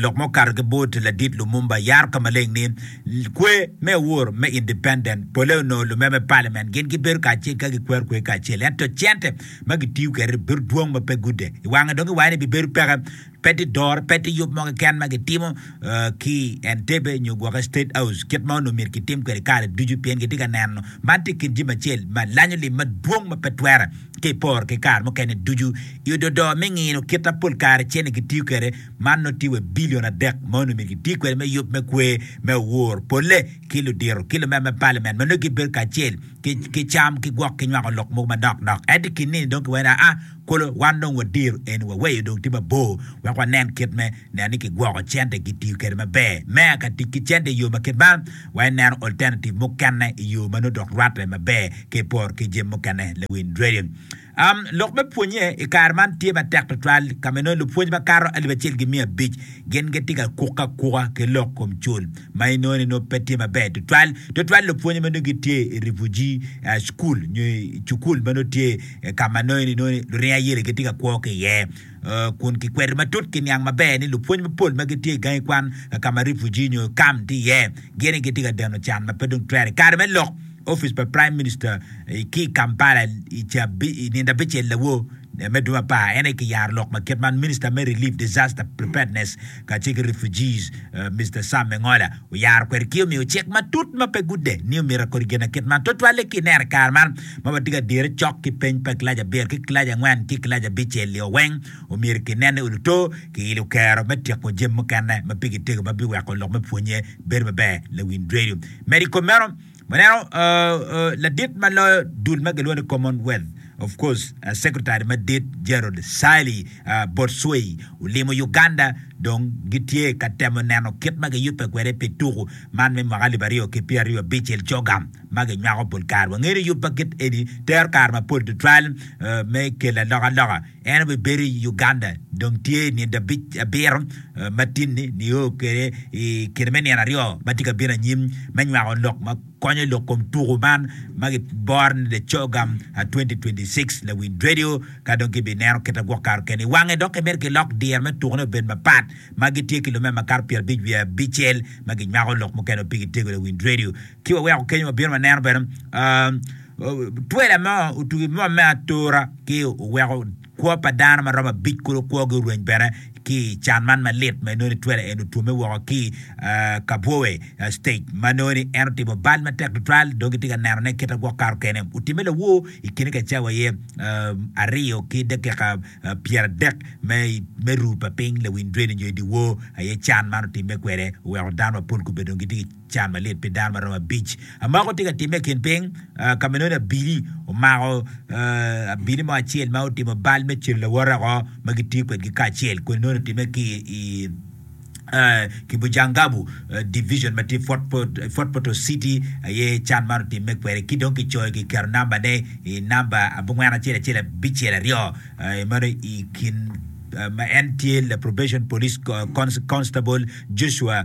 Lok ma okato ki bot ladit Lumumba yaro ka maleng ni, Kwer me awor me independent pole onongo lume me paliament gin gibedo kacel ka gikwero kwer kacel, ento cente ma gitiyo kwede bedo dwong ma pe gude i wange dok iwaco ni bibedo peke. Pe tye doro, pe tye yub mo keken ma gitimo ki i Entebbe nyo gwoke State House kit ma onongo myero kitim kwede kare ducu pien gitye ka neno man tye kinjami acel ma lanyo lim madwong ma pe twere. Ka iporo ki kare mukene ducu i ododo me ngino kit ma pol kare cente gitiyo kwede, man nongo tye wa i bilion adek ma onongo myero giti kwede me yub me kwer me owor polle ki ludito ki lumeno me paliament ma nongo gibedo kacel ki cam ki gwok ki nywako lok mogo manok nok. Ento i kin nini dong kiwene aa kolo, wan dong wadiro eni waweyo dong tye mabor wek wanen kit me. Neno ni kigwoko cente kitiyo kwede maber. Meya ka tic ki cente i yo ma kit man, wa ineno alternative mukene i yo ma nongo dok rwatte maber ka iporo ki jami mukene. Lawiny Radio. Um, lok me pwonye i kare man tye matek tutwal, ka ma inongo lupwony makato alip acel ki miya abic gin gitye ka kukke akuka ki lok kom cul, ma inongo ni nongo pe tye maber tutwal, tutwal lupwonye ma nongo gitye i refugee uh, school nyo i cukul ma nongo tye eh, ka ma nongo ni nongo ni luringo ayelo gitye ka kwo ki iye. kun kikwedo matut ki niang maber ni lupwony mapol ma gitye i gangi kwan ka ma refugee nyo camp tye iye gin ni gitye ka deno can ma pe dong twere. I kare me lok, opic pa Prime Minister ki i Kampala i nindo abicel lawo me dwe me apar en aye kiyaro lok ma kit man Minister me Relief Disaster Preparedness kacel ki Refugees, Mister Sam Engola oyaro kwede ki omiyo cik matut ma pe gude ni omyero akodi ginakit man twatwal-li ki ineno i kare man ma watye ka dire cok ki peny pa kilaci abiro ki kilaci angwen ki kilaci abicel-lio weng omyero kinen ni oluto ki ilo kero me tyeko jami mukene ma pigi tego ma biweko lok me pwonye bedo maber, Lawin Radio medo i kom meno. Waneno ladit ma loyo dul ma gilwongo ni Commonwealth, of course, Secretary madit Gerald Sally Botswey olimo Uganda dong gitye ka temo neno kit ma giyubbe kwede pi tuku man me mwaka alip aryo ki pyeraryo abic el Coga ma ginywako pol kare. Wangeyo ni yub ma kit eni tero kare mapol tutwal me kelo alokaloka. En obibedo i Uganda dong tye i nino abiro matini nio kwede i kine me nino aryo ma tye ka bino anyim me nywako lok ma konyo lok kom tuku man ma giboro ni The Chogam 2026 Lawiny Radio ka dong kibineno kite gwok kare kene i wange dok kibedo ki lok diro me tuku ne obed mapat ma gitye ki lume makato pyera abic wiye abicel ma ginywako lok mukene ma pigi tego Lawiny Radio ki waweko kenyo wabino waneno bene Twela mo otugo i boma me atura ci oweko kwo pa dano ma romo abic kulu kwogi orweny bene ki i can man malit ma inongo ni twela eni otwomme woko ki i Kabwowe stage ma nongo ni en otimo bal matek tutwal dong kitye ka nenone kite gwok kato kene. Otimme lawor i kine ka cawa aye aryo ki dakika pyeradek me ru pa piny lawiny dweni nyo i dyewor aye can man otimme kwede oweko dano mapol kobedongo gitye ki Ca malit pi dano maromo abic. Amoko tye ka timme i kin piny, ka ma nongo abili omako abili mo acel ma otimo bal me celo lawote oko ma gitiyo kwedgi kacel. Koni nongo otimme ki i Kibujangabu Division ma tye i Fort Portal City aye can man otimme kwede. Ki dong kicoyo kiketo nambane i namba abongwen acel acel abicel aryo meno i kin ma en tye la Probation Police Constable Joshua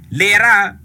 Lira,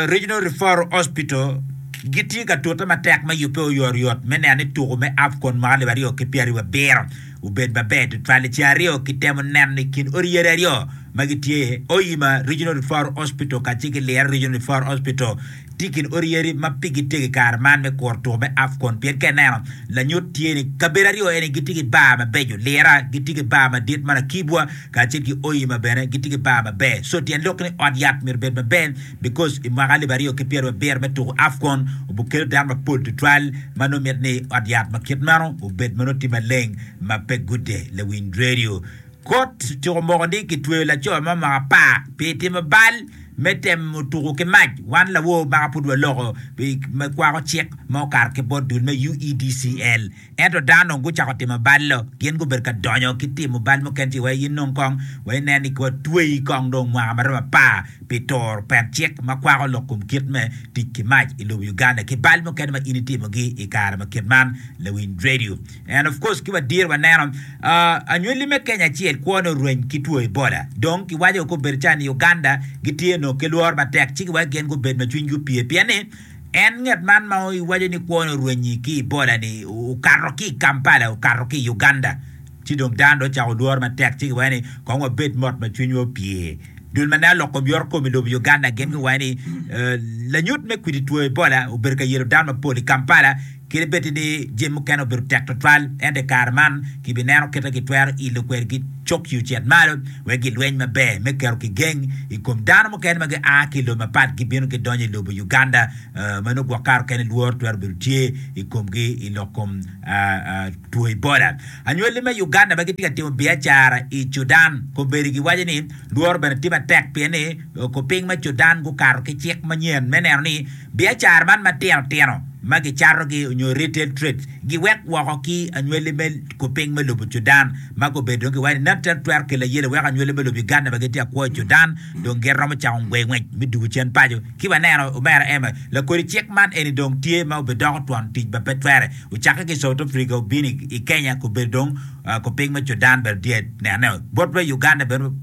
Regional Referral Hospital gitye ka tute matek me yubbe oyotoyot me neno ni tuku me AFCON mwaka alip aryo ki pyeraryo abiro obed maber tutwal. I ceng aryo kitemo neno ni kin odi yadi aryo ma gitye i Hoima Regional Referral Hospital kacel ki Lira Regional Referral Hospital tye i kin odi yadi ma pigi tegi kare man me kuro tuku me AFCON pien ka ineno lanyut tye ni kabedo aryo eni gitye ki bar mabeco. Lira gitye ki bar madit ma lakibwa kacel ki oyi ma bene gitye ki bar maber so tyen lok ni ot yat myero bed maber because i mwaka alip aryo ki pyerabiryo abiro me tuku Afcon obukelo dano mapol tutwal ma nongo mit ni ot yat ma kit meno obed ma nongo tye maleng ma pe gude lawiny radio kot ociko moko ni kitweyo laco mo mwaka apar pi timo bal me temo tuku ki mac wan lawor maka pud waloko me kwako cik ma okato ki bot dul me UEDCL. Ento dano onongo gucako timo bal-lo, gin gubedo ka donyo ki timo bal mukene ci wai inong kong, wai inen ni wa tweyi kong dong mwaka ma romo apar pi turo pet cik ma kwako lok kom kit me tic ki mac i lobo Uganda ki bal mukene ma in itimogi i kare ma kit man, Lawiny Radio. And of course ki wa dir waneno anywali me Kenya acel kwone orweny ki two Ebola, dong ki waco kong bedo calo ni Uganda gitye onongo ki lworo matek ci ki wai gin gubed ma cwinygi opye pien ni En nget man ma iwaco ni kwone orwenyi ki i boda ni okato ki i Kampala okato ki i Uganda ci dong dano dong ocako lworo matek ci giwaco ni kong wabed mot ma cwinywa opye. Dul ma nen olok kom yoro kom i lobo Uganda gin giwaco ni lanyut me kwidi two Ebola obedo ka yelo dano mapol i Kampala Kadi bed ni jami mukene obedo tek tutwal, ento i kare man kibineno kit ma gitwero ilo kwede ki cok i ocit malo wek gilweny maber me keto kigeng i kom dano mukene ma gia ki i lobo mapat gibino gidonyo i lobo Uganda ma nongo gwok kare okene lworo twero bedo tye i komgi i lok kom two Ebola. Anywali me Uganda ma gitye ka timo biacara i Cudan kobedi giwaco ni lworo bene tye matek pien ni kupiny me Cudan gukato ki cik manyen me neno ni Biacara man matino tino ma gicatogi onyo retail trades giwek woko ki anywali me kuping me lobo Sudan ma gubedo dong giwaco ni nonto twero kelo ayele weko anywali me lobo Uganda ma gitye akwo i Sudan dong gin romo cako ngwe ngwec me dugo cen paco. Ki waneno Omera Emma, lakodi cik man eni dong tye ma obidoko twon tic ma pe twere ocakke ki i South Africa obino i Kenya gubedo dong kuping me Sudan bene tye nene bot me Uganda bene.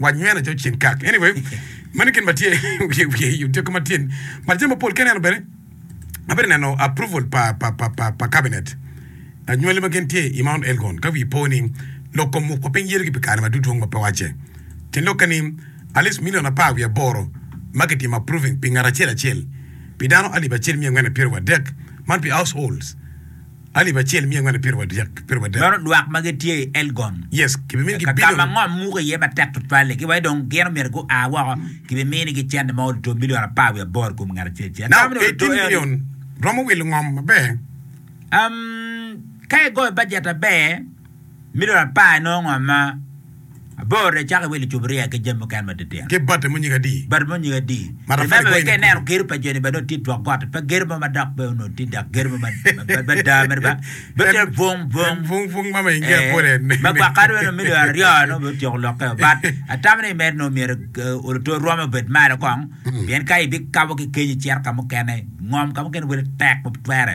wanywena jo cin kak anyway mani gin matye wiye wiye i otyeko matyen but jami mapol ki aneno bene abedo neno approval pa pa pa pa, pa cabinet anywali ma gin tye i Mount Elgon ka wi po ni lok kom muk pa piny yere ki pi kare ma dudwong ma pe wacce tin lok kani at least million apar wiye aboro ma ki timo approving pi ngat acel acel pi dano alip acel miya angwen epiro wadek man pi households Alip acel miyo ngwani piriwa dek, piriwa adek. Meno lwak ma gitye i Elgon. Yes, kibimiyo gi Ka ma bilion. ngom muko iye matek tutwal-li, ki wai dong gin omyero gua woko, kibiminigi cente ma oruto bilion apar wiye aboro i kom ngat acel acel. Now, Atamo ni oruto eighteen eno-ni. million romo wilo ngom maber. Umm, ka igoyo bajet maber. Mi dong lapar inongo ngo ma abor dong icako iwilo lucuburia ki jami mukene matitino. Ki bati mo nyige adi? Bati mo nyige adi? Remember bene ka ineno gedo pa joni bene dong tye twok gotti pe gedo mo madok pe onongo tye dok gedo mo mada mere ba bedo calo bung bung bung bung ma mainge apole ma gwaka dong onongo milion aryo onongo bene otyeko lokke but atamo ni mere onongo myero oluto rwom obed malo kong pien ka ibikabo ki kenyo icito ka mukene ngom ka mukene wele tek ma pe twere.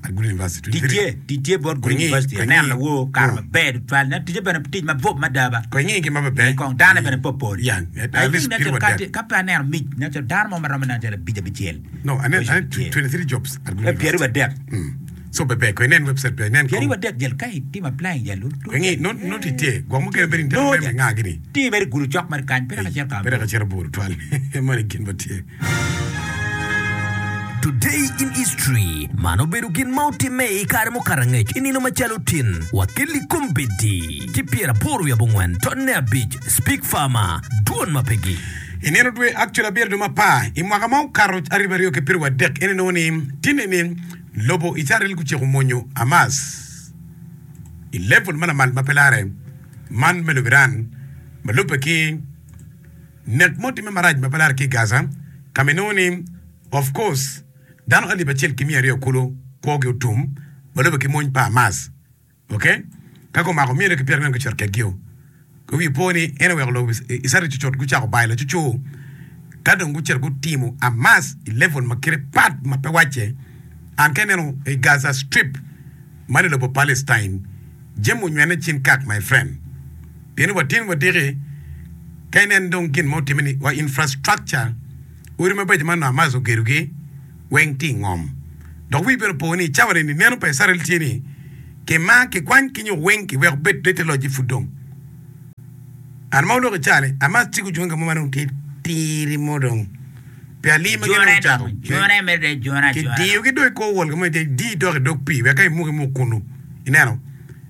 Tic tye bot Good University, aneno lawo okato maber tutwal, ento ticce bene tic mabup mada ba. Pii kong dane bene popol. Ka pe aneno mic, nen calo dano mo ma romo nen calo abic abicel. Pyeraryo adek. Pyeraryo adek jel ka itimo applying jel nongo jel. Ti mere i gudo cok mere kany, pe dok acito ka aburu. Today in History, Man obedo gin ma otimme i kare mukato angec i nino macalo tin wa ki Likombeddi ki pyeraboro wiye abongwen tonne abic, Speak Farmer, Dwon ma pe gi. I nino dwe actually abiro dong mapar i mwaka ma okato ariba aryo ki piriwa dek ene nongo ni tinne ni lobo Icarel guciko monyo Hamas i level ma lamal ma pe lare man me lobo Iran ma lubbe ki Nek ma otimme marac ma pe lare ki i Gaza, ka ma inongo ni, of kos, dano alip acel ki miya aryo kulu kwogi otum ma lube ki mony pa Hamas. Ok, ka gumako mia aryo ki pyerangwen gucito kedgio, kwe wi po ni en oweko lobo Icrael cucut gucako bayo lacucu ka dong gucito gutimo Hamas i level ma kite pat ma pe wacce. An ka ineno i Gaza Strip man i lobo Palestine, jami onywene cin kak my friend. pien watyen wadiki ka inen dong gin ma otimme ni wa infrastructure, odi mabeco ma nua Hamas ogedogi weng tye i ngom. Dok wii bene opo ni i cawa ni-ni neno pa Icrael tye ni kimar, kikwany ki nyo weng kiweko bed ni te loc-ci pud dong. An ma oloko i caa-ni, Hamas ci gucunge ka mo ma dong tye tiri mo dong pi alir ma gin dong ocako. Kidiyogi dong i kor wol ka mo itye dii dok idog pii wek ka imuk imuk kunu. Ineno?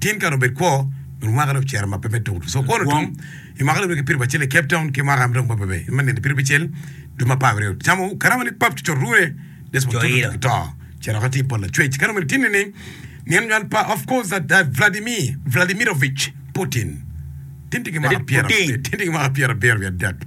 Tin kare obed kwo, nyo mwaka dong ocito ma pe me tuku-tu. So kwon otum, i mwaka dong kipito bacel i Cape Town, ki mwaka dong bebe bebe, me nino kipito bicel, dwe me apar aryo. Camo karama ni pap cucot rune, Desmond Tutu Tutu gito, ce dok atir pol lacwec. Kare omene tin nining? Nino nywal pa, of course, that uh, Vladimir Vladimirovich Putin. Tin tye ki mwaka Vladimir pyera, Putin. tin tye ki mwaka pyera abiro wiye adek.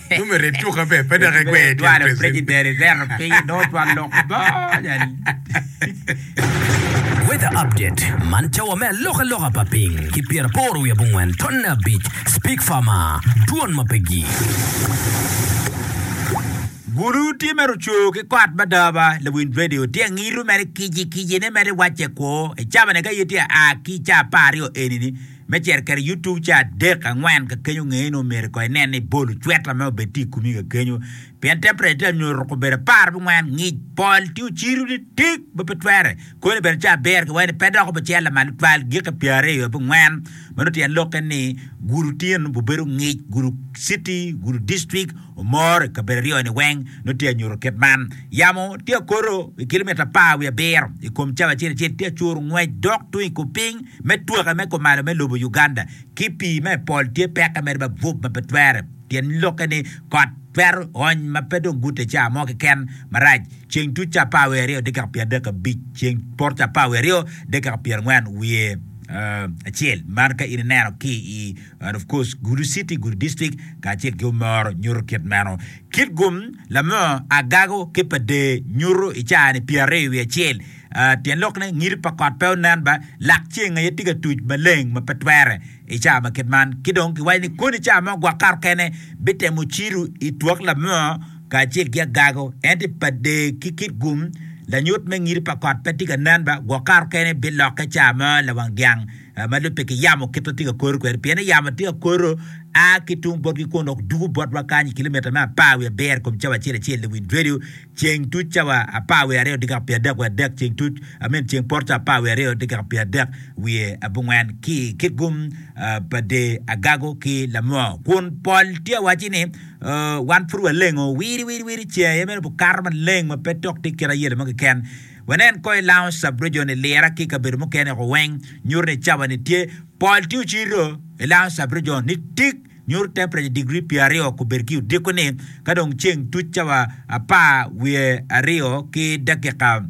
Dwaro preciden i zeto piny i dog twal lok boo. Weather update man cawa me alokaloka pa piny ki pyera aboro wiye abongwen tonne abic Speak farmer Dwon ma pe gii. Bulu tye mere ocoo ki kot madaba lawinj radio tye angitu mere kici kicine mere wacce kwo icabane ka ye tye aa ki i caa apar aryo eni ni. me cito kede youtube ca adek angwen kakenyo ngeye ni omyero ko inen ni bolo cweta me obed tye ikumi kakenyo pien temperature tye anyo ruko obedo apar bi ngwen ngic pol tye ocido ni tik ma pe twere koni bene ca abiro ki wene pe dok obicel lamal tutwal giki pyer aryo bi ngwen ma nongo tyen lokke ni gudo tyen nongo bubedo ngic gudo city gudo district Omor i kabedo aryo-ni weng nongo tye ka nyuto kit man. Yamo tye ka koto i kilomitta apar wiye abiro i kom cawa acel acel, tye ka curo ngwec dok tung i kupiny me twake me kumalo me lobo Uganda ki pii ma i pol tye peke mere ma bwub ma pe twere. Tyen lokke ni kot twero ony ma pe dong gute ca mo keken marac. Ceng tuc ca apar wiye aryo dakika pyer adek abic, ceng poto ca apar wiye aryo dakika pyer angwen wiye acel, man ka in ineno ki i. and of course gudo city, gudo district kacel ki omoro nyuto kit meno. Kit gum lamo agago ki pa dee nyuto i caa ni pyer aryo wiye acel, ah, tyen lok ne ngido pa kot pe onen ba, lak ceng aye tye ka tuc maleng ma pe twere i caa ma kit man. Ki dong kiwaco ni koni caa mo gwok kato kene bitemo cido i twak lamo kacel ki agago, ento i pa dee ki kit gum lanyut me ngido pa kot pe tye ka nen ba, gwok kato kene bilokke caa mo lawang dyang. ma dong pe kiyamo kit ma tye ka koro kwede, pien yamo tye ka koro a ki tung botgi kun dok dugo botwa kany i kilometre me apar wiye abiro i kom cawa acel acel i wi redio ceng tuc cawa apar wiye aryo dakika pyera adek wiye adek ceng tuc I mean ceng poto cawa apar wiye aryo dakika pyera adek wiye abongwen ki kit gum pa dye agago ki lamoo kun pol tye ka wacci ni wan pud walengo wiri wiri wiri ceng aye meno bikato maleng ma pe tok tye kit ayela mo keken. Wanen ko i Lounge Sub-Region i Lira ki i kabedo mukene woko weng nyuto ni cawa-ni tye pol tye ocito i Lounge Sub-Region ni tik nyuto tempreca digri pyeraryo kobed ki odiko-ni ka dong ceng tuc cawa apar wiye aryo ki dakika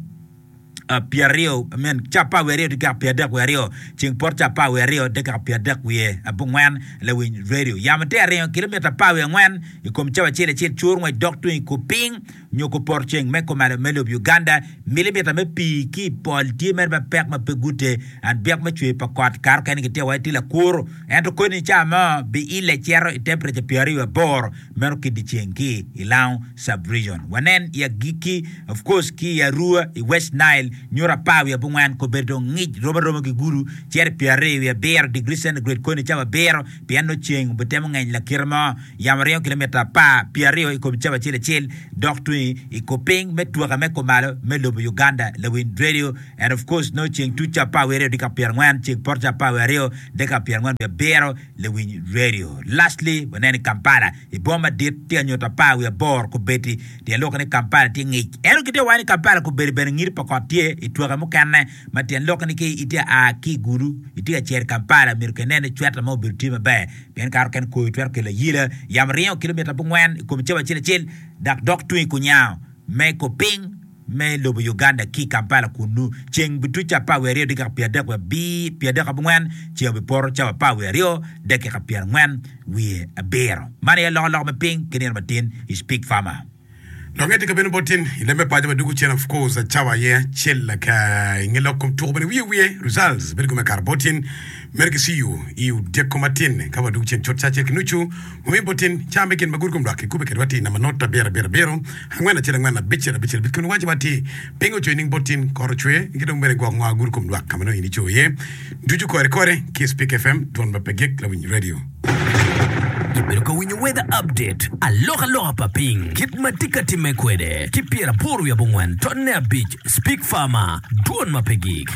pyeraryo I mean cawa apar wiye aryo dakika pyeradek wiye aryo ceng poto cawa apar wiye aryo dakika pyeradek wiye abongwen Lawiny Radio yamo tye aringo kilomita apar wiye angwen i kom cawa acel acel cur ngwec dok tung i kor piny nyo kupor ceng me kumalo me lob Uganda, milimita me pii ki i pol tye mere ma pek ma pe gute, and byek me cwer pa kot kare okene gitye wai ti lakuru, ento koni ni ca mo biille cito i tempreca pyer aryo aboro meno ki diceng ki i Lango Sub-Region. Wanen i agikki, of course ki i Arua, i West Nile, nyuto apar wiye abongwen kong bedo dong ngic romo aroma ki gudu cito i pyer aryo wiye abiro degree centigrade koni ni ca wabiro pien nongo ceng obitemo ngeny lakite mo. yamo ringo kilometre apar pi aryo i kom cawa acel acel dok tung i kor piny me twake me kumalo me lobo Uganda Lawin Radio and of course nongo ceng tuc cawa apar wiye aryo dakika pyera angwen ceng poto cawa apar wiye aryo dakika pyera angwen wiye abiro Lawiny Radio lastly waneno i Kampala i boma madit tye anyuto apar wiye aboro kubeti tyen lok ni Kampala tye ngic ento gitye wango ni Kampala kubedi bene ngiti pa kot tye i twake mukene ma tyen lok ni ki itye a ki i gulu itye ka cito i Kampala myero ki inen ni cweta mo obedo tye maber Pien kare okene koyo twero kelo ayila. Yamo ringo kilomita abongwen i kom cawa acel acel dok dok tung i kunyango me i kor piny me lobo Uganda ki i Kampala kunnu. Ceng bituco apar wiye aryo dakika pyeradek wiye pyeradek abongwen, ceng obipoto cawa apar wiye aryo dakika pyerangwen wiye abiro. Man aye loko loko me piny ki nino matin. Speak Farmer. Longe tye ka bino bot in i leb me paco ma dwogo cen of course a cawa aye acel laka i nge lok kom tuko bene wiye wiye results bedo kome kara bot in mere ki ciu i odyeko matin ka wa dwogo cen cut ca acel ki nucu wa miyo bot in ca me gin ma gudi kom lwak ki kube kede wati namba not abiro abiro abiro angwen acel angwen abicel abicel abicel kome waci wati pingo ocoyo ning bot in kore ocwe ki dong bene gwok nwa gudi kom lwak kama nongo in icoyo iye ducu kore kore ki speak fm dwon ma pe gik lawiny radio. Ibedo ka winyo weather update, alokaloka pa piny, kit ma tye ka timme kwede, ki pyeraboro wiye abongwen, tonne abic, Speke Farmer, dwon ma pe gik.